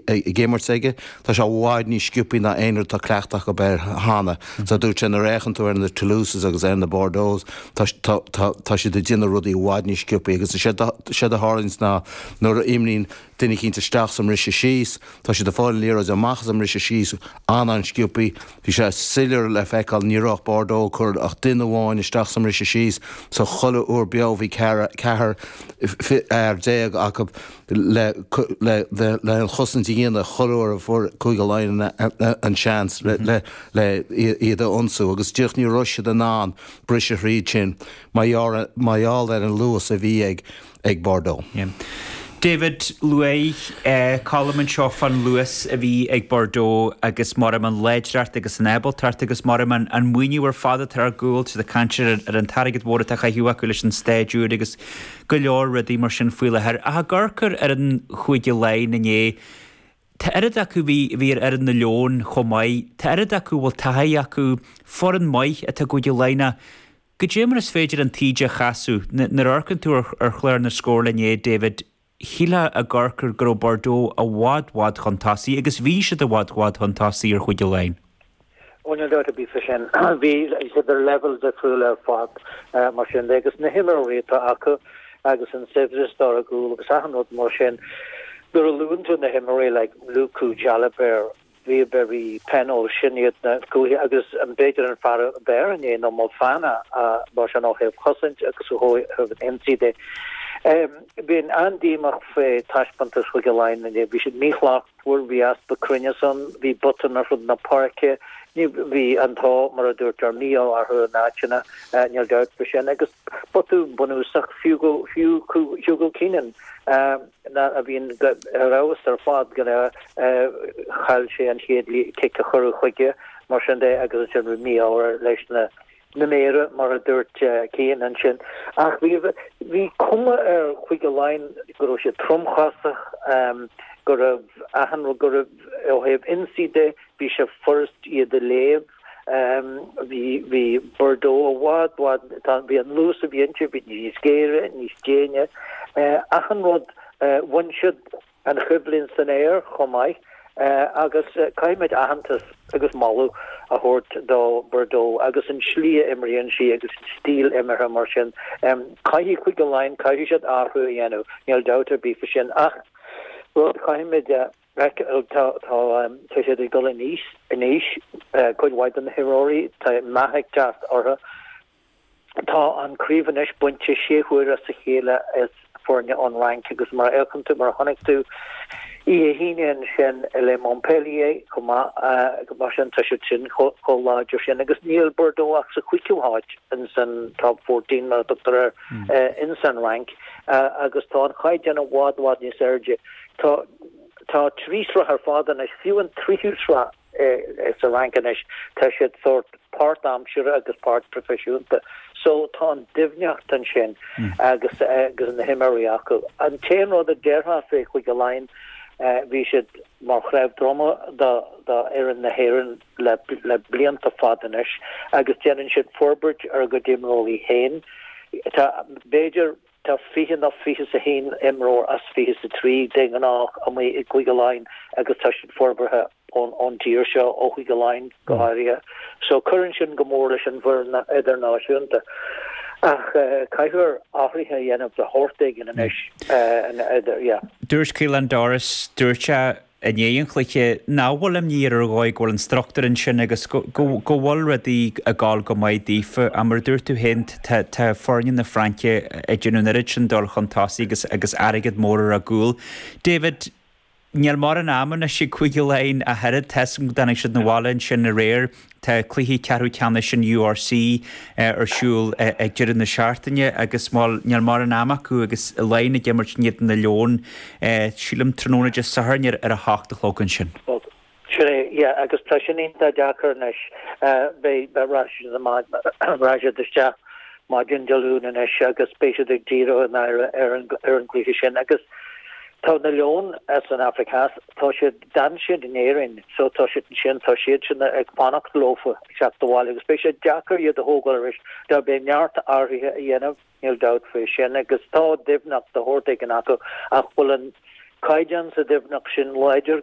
ag imirt aige. Tá sé i bhfad níos sciopthaí ná aon rud a bhfuil cleachtadh acu air cheana. So dúirt sé nuair a fhéachann tú ar na Toulouses agus ar na Bordeaux, tá, tá, tá, tá siad ag déanamh rudaí i bhfad níos sciopthaí agus is é, is é a tharlaíonns ná nuair a imríonn duine eicínt isteach sa mbriseadh síos, tá siad ag fáil an liathróid amach as an mbriseadh síos an-, an-sciopthaí. Bhí sé soiléir le feiceáil, ní raibh Bordeaux ag cur ach duine amháin isteach sa mbriseadh síos, so chuile uair beo bhí ceathar, ceithre fhear déag acu. leis an chosaint a dhéanamh corruair fuair Cúige Laighean an seans le iad a ionsú agus díreach ní raibh siad in ann briseadh thríd sin mar gheall ar an luas a bhí ag Bordeaux. David, luaigh Colm ansin fán luas a bhí ag Bordeaux agus m'anam an láidreacht agus an ábaltacht agus m'anam an maoiniú ar fad atá ar gcúl, siad ag caint ar an t-airgead mhór atá chaithiú acu leis an staid úr agus. go leor rudaí mar sin faoi láthair ach ag amharc ar ar an Chúige Laighin inné tá oiread acu bhí bhí ar fhoireann na Leon chomh maith tá oiread acu a bhfuil taithí acu foireann maith atá i gCúige Laighin ach goidé mar is féidir an taoide a chasadh nuair nuair a amharcann tú ar ar chlár na scór inné David shílfeá ag amharc go raibh Bordeaux i bhfad bhfad chun tosaigh agus bhí siad i bhfad bhfad chun tosaigh ar Chúige Laighin. Ó níl dabht ar bith fá sin, bhí siad ar leibhéal difriúil ar fad, mar sin de, agus na himreoirí atá acu agus an saibhreas atá ar a gcúl agus achan rud mar sin. Nuair a luann tú na himreoirí like Lucu, Jalibert, Bielle-Biarrey, Penaud, sin iad na gaotha agus b'fhéidir an fear ab fhearr inné ná Moefana mar sin ó thaobh chosaint agus ó thaobh an ionsaí de. Bhí mé an-díomách fá taispeántas Chúige Laighean inné, bhí siad míshlachtmhar. mhar bhí easpa cruinnis ann, bhí botúin ar fud na páirce, ní, bhí an t-ádh, mar a dúirt tú, an mí-ádh orthu in áiteanna, níl dabht faoi sin, agus botún bunúsach fiú go fiú Hugo Keenan ná a bhíonn ar fheabhas ar fad go léir chaill sé an chéad cic a chuireadh chuige, mar sin de agus ansin bhí mí-ádh air leis na réiteoirí, mar a dúirt Cian ansin, ach bhí bhí cuma ar Chúige Laighean go raibh siad tromchosach, go raibh achan rud, go raibh ó thaobh ionsaí de, bhí sé furast iad a léamh. Bhí bhí Bordeaux i bhfad bhfad, tá, bhí an luas a bhí inti, bhí níos géire, níos déine, achan rud, bhain siad, an choimhlint san aer chomh maith agus caithfimid aitheantas agus moladh a thabhairt do Bordeaux agus an slí a imríonn sí agus an stíl imeartha mar sin caithfidh Cúige Laighean caithfidh siad athrú a dhéanamh níl dabht ar bith fá sin ach rud caithfimid a tá tá tá siad ag dul in aois in aois cuid mhaith de na himreoirí tá meath ag teacht orthu Tá an craobh anois bainte sé huaire i ndiaidh a chéile ag foirne ón Fhrainc agus mar a fhéachann tú, mar a chonaic tú oíche hAoine ansin le Montpellier chomh maith, mar sin tá siad sin chomh láidir sin agus níl Bordeaux ach sa chúigiú háit insan Top Fourteen mar a thugtar air insan Fhrainc agus tá an caighdeán i bhfad, bhfad níos airde. Tá, tá trí shraith ar fad anois, fiú an tríú sraith. sa Fhrainc anois, tá siad sórt páirt aimsire agus páirt proifisiúnta, so tá an doimhneacht ansin agus na himreoirí acu. An t-aon rud a déarfá fé Chúige Laighean, bhí siad mar chnámh droma do fhoireann na hÉireann le blianta fada anois agus déanann siad forbairt ar a gcuid imreoirí féin. Tá, b'fhéidir, Tá fiche nó fiche 's a haon imreoir as fiche 's a trí, de ghnáth, a mbíonn i gCúige Laighean agus tá siad forbartha ón dtír seo, ó Chúige Laighean go háirithe, so cuireann sin go mór leis an bhfoireann idirnáisiúnta. Ach caithfear athruithe a dhéanamh de shórt éigin anois, yeah. Dúirt Caelan Doris, dúirt sé i ndiaidh an chluiche, nach bhfuil imní air ar dhóigh go bhfuil an struchtúr ansin agus go bhfuil rudaí ag dul go maith daofa. Ach mar a dúirt tú féin, tá foirne na Fraince ag déanamh an oiread sin dul chun tosaigh agus airgead mór ar a gcúl. David, níl mórán ama anois ag Cúige Laighean ach oiread, tá fhios agam go dtáinig siad 'na bhaile ansin aréir, Tá cluichí ceathrú ceannais an URC ar siúl ag deireadh na seachtaine agus níl mórán ama acu agus Laighin ag imirt in éadan na Leon, sílim, tráthnóna Dé Sathairn ar a hocht a chlog ansin. Bhuel, sin é, yeah, agus tá sin iontach deacair anois. Beidh, rachaidh siad amach, rachaidh siad isteach maidin Dé Luain anois agus beidh siad ag díriú a n-aire ar an gcluiche sin agus tá na Leoin as an Afraic Theas, tá siad, d'fhan siad in Éirinn so tá siad ansin, tá siadsan ag fanacht leofa teacht abhaile agus beidh sé deacair iad a thógáil aríst, beidh neart athruithe a dhéanamh, níl dabht faoi sin agus tá doimhneacht de shórt éigin acu ach an bhfuil an caighdeán sa doimhneacht sin?